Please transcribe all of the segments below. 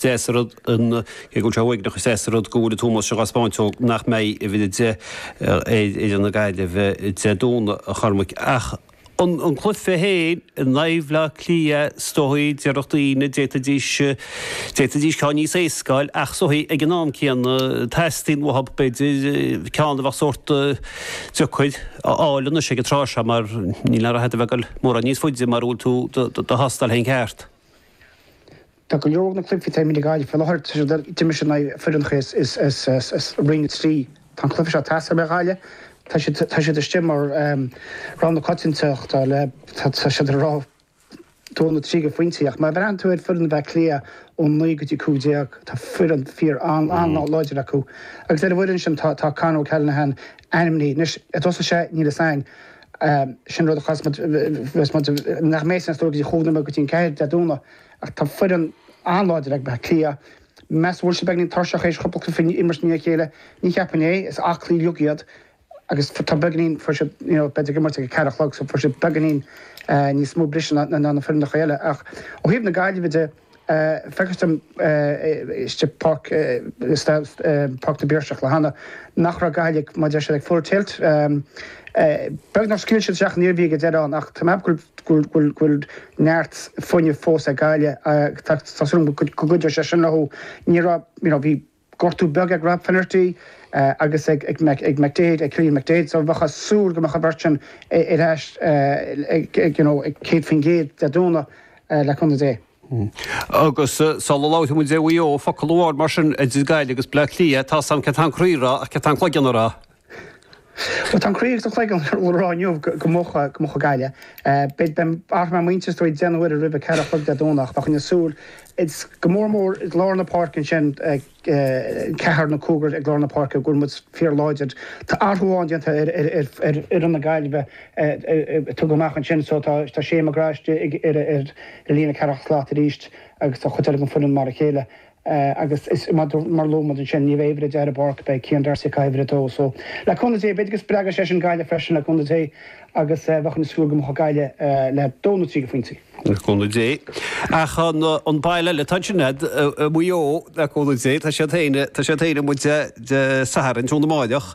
deas an rud, cé go bhfuil sé uaigneach, is deas an rud go bhfuil an t-ómós seo á spáint ó nach mbeidh uimhir a 10 ar fhoireann na Gaillimhe Dé Domhnaigh, a Chormaic. Ach an cluiche féin, in aghaidh Bhleá Cliath, is dóigh, déarfadh daoine, d'fhéadfaidís, d'fhéadfaidís ceann níos éasca a fháil, ach is dóigh, ag an am céanna, teastaíonn uathu, b'fhéidir, ceann a bheadh sórt deacair a fháil anois ag an tráth seo mar níl aon ghraithe ag dul mórán níos faide mura bhfuil tú do thástáil féin ceart. Tá go leor de na cluichí atá imeartha ag Gaillimh faoi láthair tar éis dul i dtimis in aghaidh foireannachaí as Roinn 3. Tá an cluiche seo tástáil ar Ghaillimh. Tá siad tá siad istigh mar rogha na coitiantachta le tá siad ar rogha 2 nó 3 de phointí ach má bhreathann tú ar foireann Bhleá Cliath ó 9 go dtí 15, tá foireann fíor an-láidir acu agus ar an bhfoireann sin tá tá Con O'Callaghan ainmnithe. Anois, an dtosóidh sé níl fhios a'inn. Sin rud a chas muid bheas muid nach mbeidh a fhios a'inn go dtí an 4 Dé Domhnaigh. Ach tá foireann an-láidir ag Baile Átha Cliath. Meas tú an mbeidh siad tuirseach théis cúpla cluiche a imirt i ndiaidh a chéile. Ní cheapaim é, is aclaí uilig iad agus tá beagáinín, fuair siad, you know, b'fhéidir ag imirt ag a ceathair a chlog, so fuair siad beagáinín níos mó briseadh ná na foireannacha eile. Ach ó thaobh na Gaillimhe de, feictear dom istigh i bPáirc, Páirc na bPiarsach an lá cheana, nach raibh Gaillimh, mar a deir siad, ag full tilt. Beag nár scaoil siad isteach an Iarmhí ag an deireadh ann ach tá mé ag go bhfuil, go bhfuil, go bhfuil neart fuinnimh fós ag Gaillimh ach tá tá súil agam go gcuideoidh sé sin leo. Ní raibh, you know, bhí gortú beag ag Rob Finnerty agus ag ag Mac ag McDaid, ag Cillian McDaid, so bheifeá ag súil go mbeadh an bheirt sin ar ais ag ag you know ag 100% Dé Domhnaigh le cúnamh Dé. Agus sula labhraíonn muid de Mhaigh Eo, focal amháin mar sin idir Gaillimh agus Baile Átha Cliath, tá a fhios a'm céard tá an croí a rá ach céard tá an cloigeann a rá. Bhuel, tá an croí agus an cloigeann a rá inniu go mbuafaidh Gaillimh. Beidh mé agus mo mhuintir ag déanamh uirthi roimh a ceathair a chlog Dé Domhnach, bheinn ag súil, go mór mór i lár na páirce ansin, ceathrar nó cúigear i lár na páirce, go bhfuil muid fíorláidir. Tá athrú amháin déanta ar fhoireann na Gaillimhe a tugadh amach ansin so tá Shane McGrath istigh ar líne ceathracha slat arís agus tá an chuid eile den foireann mar a chéile. agus is maidir mar a luaigh muid ansin, ní bheidh uimhir a deich ar an bpáirc, beidh Cian D'Arcy ag caitheamh uimhir a dó, so le cúnamh Dé, b'fhéidir go spreagfaidh sé sin Gaillimh freisin le cúnamh Dé agus bheinn ag súil go mbuafadh Gaillimh le dó nó trí de phointí le cúnamh Dé. Ach an baile eile atá ansin leat, Maigh Eo, le cúnamh Dé, tá siad féin, tá siad féin amuigh Dé Sathairn i gcoinne na Muimhneach,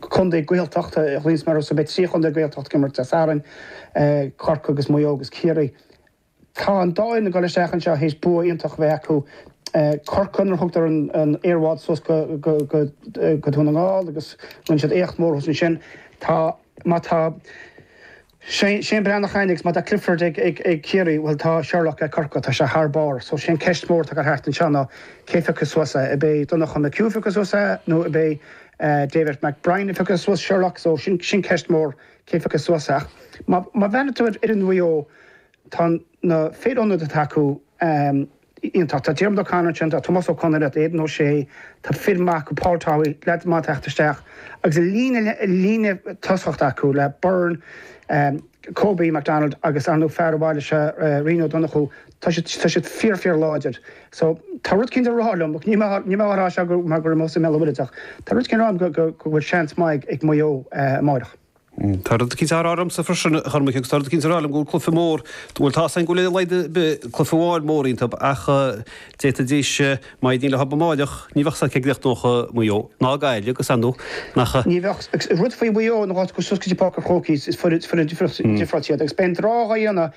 Contae Gaeltachta i Ghlinsce mar is é beidh trí chontae Gaeltachta ag imirt Dé Sathairn, Corcaigh agus Maigh Eo agus Ciarraí. Tá an dá fhoireann ag dul isteach anseo théis bua iontach a bheith acu, Corcaigh nuair a thugadar an aerbhád suas go Dún na nGall agus rinne siad éacht mór thuas ansin. Tá, má tá, Seán Breathnach ag Gaillimh, tá Clifford ag Ciarraí Bhuel tá Sherlock ag Corca, tá sé thar barr so sin ceist mhór atá ag goil thart anseo ná cé a phiocfaidh suas é? Ab é Donnacha McHugh a phiocfas suas é nó ab é David McBrien a phiocfas suas Sherlock so sin ceist mhór cé a phiocfas suas é ach má bhreathnaíonn tú ar fhoireann Mhaigh Eo tá na fir ionaid atá acu Iontach. Tá Diarmuid O'Connor ansin, tá Tomás Ó Conraoi, tá Aidan O'Shea, tá fir maithe acu, Paul Towey, leaids maithe ag teacht isteach agus an líne, líne tosaigh atá acu le Beirne, Kobe McDonald agus ar ndóigh fear an bhaile seo, Rian Ó Donnchú. Tá siad, tá siad fíor fíor láidir. So, tá rud éicint ag rá liom, níl mé, níl mé á rá seo mar gurb as an mBéal an Mhuirthead mé ach tá rud éicint ag rá liom go go go bhfuil seans maith ag Maigh Eo amáireach. Tá rud éicint ag rá liomsa freisin, a Chormaic, agus tá rud éicint ag rá liom go bhfuil cluiche mór, bhuel, tá's againn go bhfuil ar a laghad ar bith cluiche amháin mór iontub, ach d'fhéadfaidís, má éiríonn leob amáireach, ní bheadh sé ag goil ag íoc Maigh Eo, ná Gaillimh, agus ar ndóigh, nach. Ní bheadh, agus rud faoi Mhaigh Eo ná go dté siad suas go dtí Páirc an Chrócaigh, is foireann difriocht iad, agus beidh an drámh á dhéanamh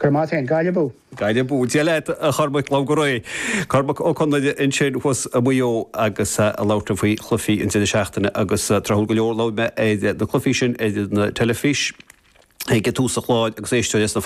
Go raibh maith a'd, Gaillimh. Gaillimh. Go ndéana a mhaith duit, a Chormaic, tóg go réidh é. Cormac Ó Conghaile ansin thuas i Maigh Eo agus ag labhairt faoi chluichí an deireadh seachtaine agus tráthúil go leor labhair mé ar na cluichí sin ar an teilifís ag tús an chláir agus éisteoirí as na